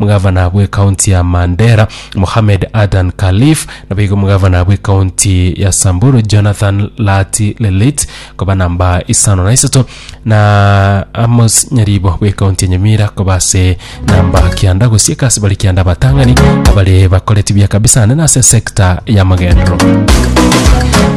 Omogavana bw'ekaunti ya Mandera, Mohamed Adan Khalif, naboigo omogavana bw'ekaunti ya Samburu, Jonathan Laati Lelit, koba namba isano na isato, na Amos Nyaribo bw'ekaunti ya Nyamira koba ase namba kianda gosieka ase bare kianda abatang'ani abare bakoreti buya kabisa ande nase sector ya magendero.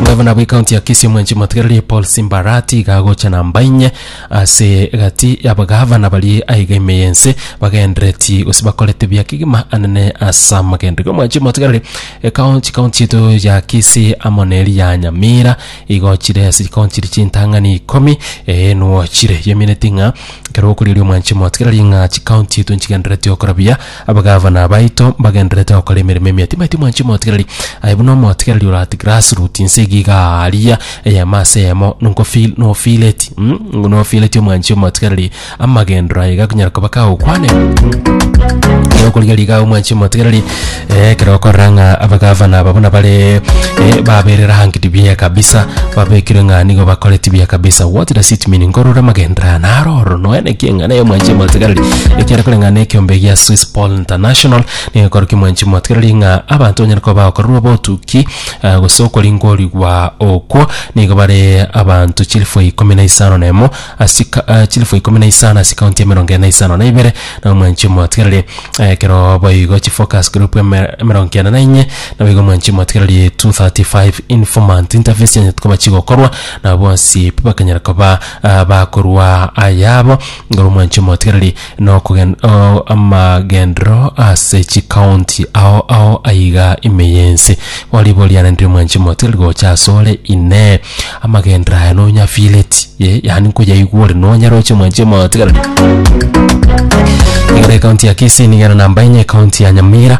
Gavana bw'ekaunti ya Kisii omwenchi motigarerie Paul Simbarati iga agocha namba inye Ase egati y'abagavana baria aiga ime y'ense, bagendereti, gose bakorete buya kegima anene ase amagenderero. Omwanchi omotigareri, ekao chikaunti chiaito ya Kisii amo neri ya Nyamira, igo chire ase chikaunti chiria chintang'ani ikomi, ee nuo chire. Yeminetie ng'a ekero okorieria omwanchi omotigareri ng'a chikaunti chiaito nchigendereti gokora buya, Abagavana baito mbagendererete gokora emeremo emiya tibaeti mwanchi omotigereri, aye buna omotigereri orati grass root inse iga igaa aria eyemo ase eyemo nko feel no feel it mm no feel it omwanchi omotigereri amagendero aye gakonyara koba kagokwane ekero okorigeria igaa omwanchi omotigereri eh ekero okorora ng'a abagavana aba buna bare eh baberire hang'iti buya kabisa babekire ng'a nigo bakoreti buya kabisa what does it mean nkorora amagendero aya naro ororo noene. Ekieng'ana ya mwanchi motigareri ekiare koreng'ana nekiombe gia Swiss Paul International nigo ekorokia mwanchi motigareri ng'a abanto banyare koba bagokorerwa obotuki eh, gose okoringorigwa okwo nigo bare abanto chilifu ikomi na isano na emo ase ka- eh, chilifu ikomi na isano ase kaunti emerongo ere na isano na ibere nabo mwanchi motigareri ekero boigo chifocus group eme- emerongo kianda na inye nabo igo mwanchi motigareri 235 informant interviews chianyete koba chigokorwa nabo bonsi pi bakanyara koba Ah, bakorwa ayabo ngoro mwanche omotigereri nokogen o- amagendero ase chikaunti ao ao aiga ime yensi oribo riananire mwanche omotigereri gocha asore inee amagendero aya nonyafileti ye yaani nkoyaigwa ore nonyare oche mwanche omotigereri Igoro ekaunti ya Kisii nigo ere namba enye ekaunti ya Nyamira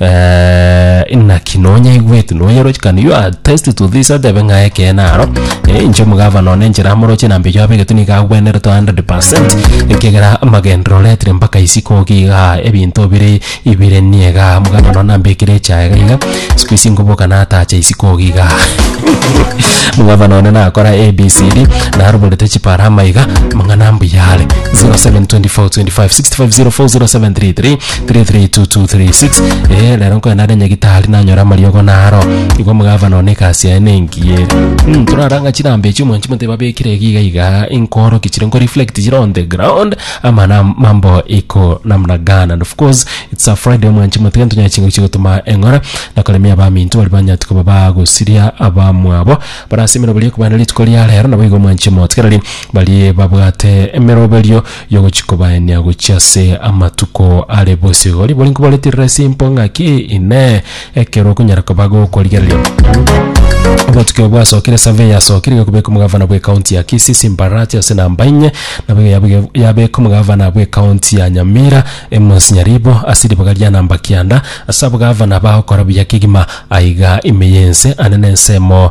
Eh, naki nonya igweti noyeroche can you attest to this atebe ng'a ekeene aro Eh, inche omogavana one enchera amoroche na mbeyo abe egetuni iga agwenerete 100% ekegera amagendero oretire mpaka isiko iga iga ebinto bire ibire niye iga omogavana one ambekire echaye iga siku isi nkoboka natacha isiko iga iga omogavana one nakora abcd naroborete chiparama iga amang'ana mbuya are 0724256504 0733 332236 eh rero nkoenda ndenye gitari nanyora amariogo naro igo omogavana one egasi yaye nengiye mm, toraranga chirambe echi omwanchi monte babekire giga iga inkoroki chire nko reflect chire on the ground amana mambo iko namna gana and of course it's a friday omwanchi monte gento nyachingo chigotuma eng'ora nakoremia abaminto bari banyati koba bagosiria abamwabo barasimira bari ekobana rituko ria rero nabo igo omwanchi monte kerari bari babwate emeroberio yogochia kobaenia gochia ase amatuko are bosio. Riborio nkobareterera ase impo ng'aki, Inee, ekero okonyara koba gokorigereria? Amatuko aya bwasokire survey yasokire iga kobeka omogavana bwe county ya Kisii Simba Arati ase namba inye nabo iga yabege- yabeka omogavana bwe county ya Nyamira Amos Nyaribo ase ribaga ria namba kianda ase abogavana bagokora buya kegima aiga ime yense ane na ensemo